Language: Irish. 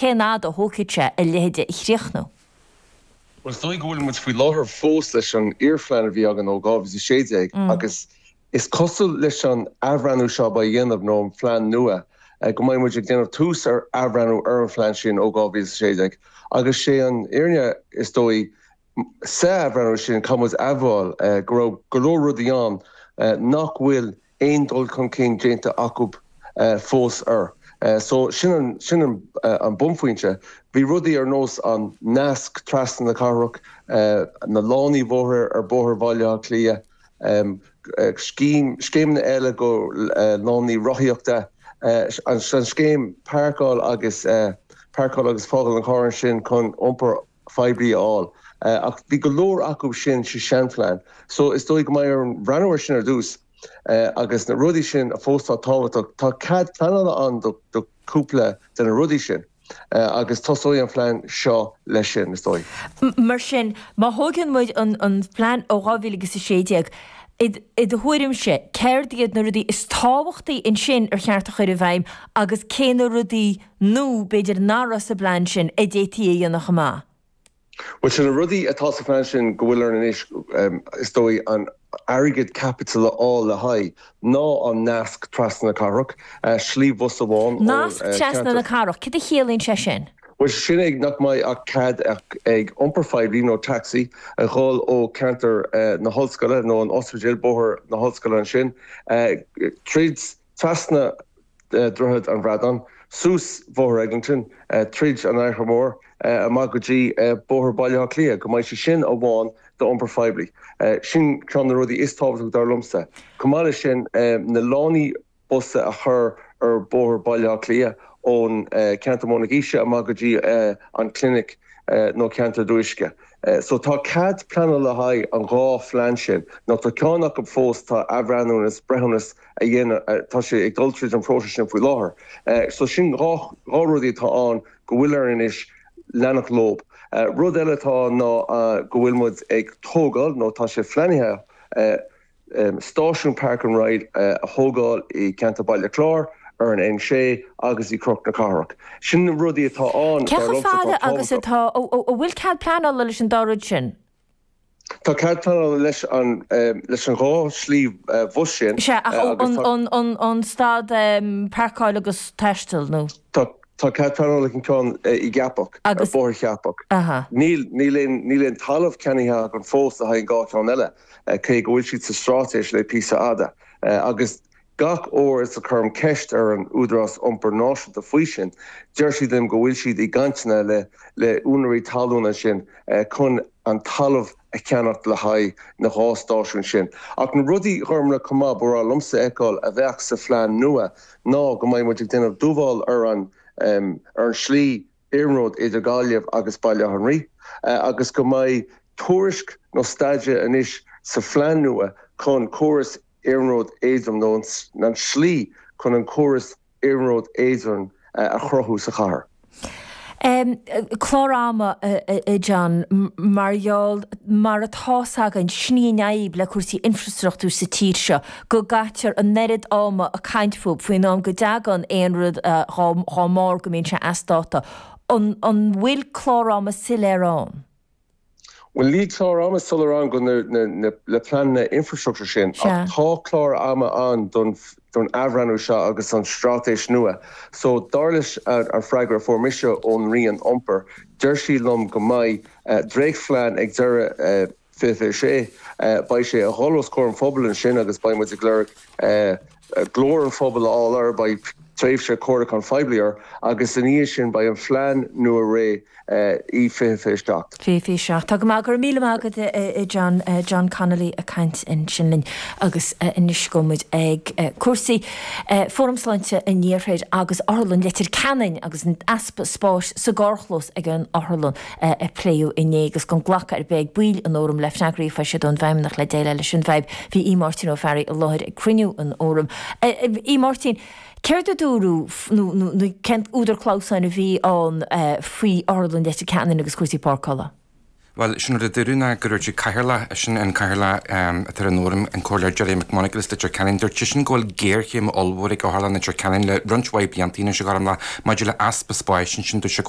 Cén fhad a thógfaidh sé a leithéide a chríochnú? Bhuel, is dóigh go bhfuil muid faoi láthair fós leis an iar-phlean a bhí againn ó 2016 agus is cosúil leis an athbhreithniú seo a bheidh á dhéanamh, nó an phlean nua, go mbeidh muid ag déanamh tús ar athbhreithniú ar an phlean sin ó 2016. Agus sé an fhírinne, is dóigh, sa athbhreithniú sin, caithfidh muid admháil go raibh go leor rudaí ann nach bhfuil aon dul chun cinn déanta acu fós air. So sin an bunphointe. Bhí rudaí ar nós an nasc trasna na cathrach, na lánaí bhóthair ar Bhóthar Bhaile Átha Cliath, scéimeanna eile go lánaí rothaíochta, an scéim páirceáil agus, páirceáil agus fágáil an chairr ansin chun iompar phoiblí a fháil. Ach bhí go leor acu sin sa seanphlean. So is dóigh go mbeidh orainn breathnú ar sin ar dtús agus na rudaí sin a fós atá tábhachtach, tá cead pleanála ann do chúpla de na rudaí sin agus tosóidh an phlean seo leis sin, is dóigh. Mar sin, má thógann muid an plean ó 2000 agus 16, i do thuairimse, céard iad na rudaí is tábhachtaí ansin ar cheart a chur i bhfeidhm agus cé na rudaí Nó b'fhéidir nach raibh sa bplean sin a d'fhéadfaí a dhéanamh chomh maith. Bhuel, seo na rudaí atá sa phlean sin go bhfuil orainn anois, is dóigh, an airgead caipitiúil a fháil le haghaidh, ná an Nasc Trasna na Cathrach, slí bhus amháin ó cheantar. Nasc Trasna na Cathrach, cad a chiallaíonn sé sin? Bhuel, sin é nach mbeidh ach cead ag iompar phoiblí nó taxi a dhul ó cheantar na hollscoile nó an ospidéil, Bóthar na hOllscoile ansin, tríd, Trasna Droichead an Bhradáin, suas Bhóthar Eglinton, tríd an Fhaiche Mhór, amach go dtí Bóthar Bhaile Átha Cliath, go mbeidh sé sin amháin d'iompar phoiblí. Sin ceann de na rudaí is tábhachtaí dar liomsa. Chomh maith leis sin, na lánaí bus a chur ar Bhóthar Bhaile Átha Cliath ón ceantar Móinín na gCiseach amach go dtí an Clinic nó ceantar Dhabhach Uisce. So tá cead pleanála le haghaidh an dhá phlean sin, nó tá ceann acu fós, tá athbhreithiúnas, breithiúnas, á dhéanamh. Tá sé ag dul tríd an phróiseas sin faoi láthair. So sin dhá rudaí atá ann go bhfuil orainn anois leanacht leob. Rud eile atá ann ná go bhfuil muid ag tógáil, nó tá sé pleanaithe, stáisiún Park and Ride a thógáil i gceantar Bhaile Chláir, ar an N6 agus i gCnoc na Cathrach. Sin na rudaí atá ann, dar liomsa, atá tábhachtach. Cé chomh fada agus atá, an bhfuil cead pleanála leis an dá rud sin? Tá cead pleanála leis an dhá shlí bhus sin. Is ea, ach an stad páirceáil agus taisteal nó? Tá cead pleanála ag an ceann i gCeapach, ar Bhóthar Cheapach. Níl aon talamh ceannaithe againn fós le haghaidh an dhá cheann eile, cé go bhfuil siad sa straitéis le píosa fada, agus Gach uair is a chuirim ceist ar an Údarás Iompair Náisiúnta faoi sin, deir siad liom go bhfuil siad i gcainteanna le le húinéirí talún ansin chun an talamh a cheannacht le haghaidh an dá stáisiún sin. Ach na rudaí gorma chomh maith ba bhreá liomsa a fheiceáil a bheadh sa phlean nua ná go mbeidh muid ag déanamh dúbláil ar an ar an slí iarnróid idir Gaillimh agus Baile Átha an Rí agus go mbeidh tuairisc nó staidéar anois sa phlean nua chun córas Iarnród Éadrom nó an tslí chun an córas iarnróid éadrom a chruthú sa chathair. Clár ama, a John, mar gheall, mar atá 's againn, is ní i ndeabhaidh le cúrsaí infrastruchtúir sa tír seo go gcaitear an oiread ama ag caint fúthu faoin am go dtagann aon rud dhá mbarr go mbíonn sé as dáta. An bhfuil clár ama soiléir ann? Bhuel, níl clár ama soiléir ann do na pleananna infreastruchtúir sin, ach tá clár ama ann don athbhreathnú seo agus don straitéis nua. So, dar leis an bhfreagra a fuair mise ón Roinn Iompair, deir siad liom go mbeidh dréachtphlean ag deireadh 2026. Beidh sé ag dul os comhair an phobail ansin agus beidh muid ag lorg glór an phobail a fháil air. Beidh tréimhse comhairliúcháin phoiblí air agus ina dhiaidh sin beidh an phlean nua réidh i 2027. 27. Tá go maith. Go raibh míle maith agat, a John. John Connolly ag caint ansin linn agus anois gabhfaidh muid ag cúrsaí Fóram Sláinte an Iarthair agus Otharlann Leitir Ceanainn agus an easpa spáis sa gcarrchlós ag an Otharlann. a pléadh inné agus gan glacadh ar bith ag baill an Fhóraim le freagraí a fuair siad ón bhfeidhmeannach le déileáil leis an bhfadhb. Bhí Aodh Máirtín Ó Fearraigh i láthair ag cruinniú an Fhóraim. Aodh Máirtín, Céard a dúradh nó cén t-údar clamhsáin a bhí ann faoi Otharlann Leitir Ceanainn agus cúrsaí páirceála? Bhuel, sin an rud a dúradh ná go ndúirt an Cathaoirleach, eisean an Cathaoirleach atá ar an Fhóram, an Comhairleoir Gerry McMonagle as Leitir Ceanainn, dúirt seisean go bhfuil géarchéim ollmhór ag Otharlann Leitir Ceanainn le roinnt mhaith blianta anois a ghairmleach maidir le easpa spáis ansin. Dúirt sé go bhfuil.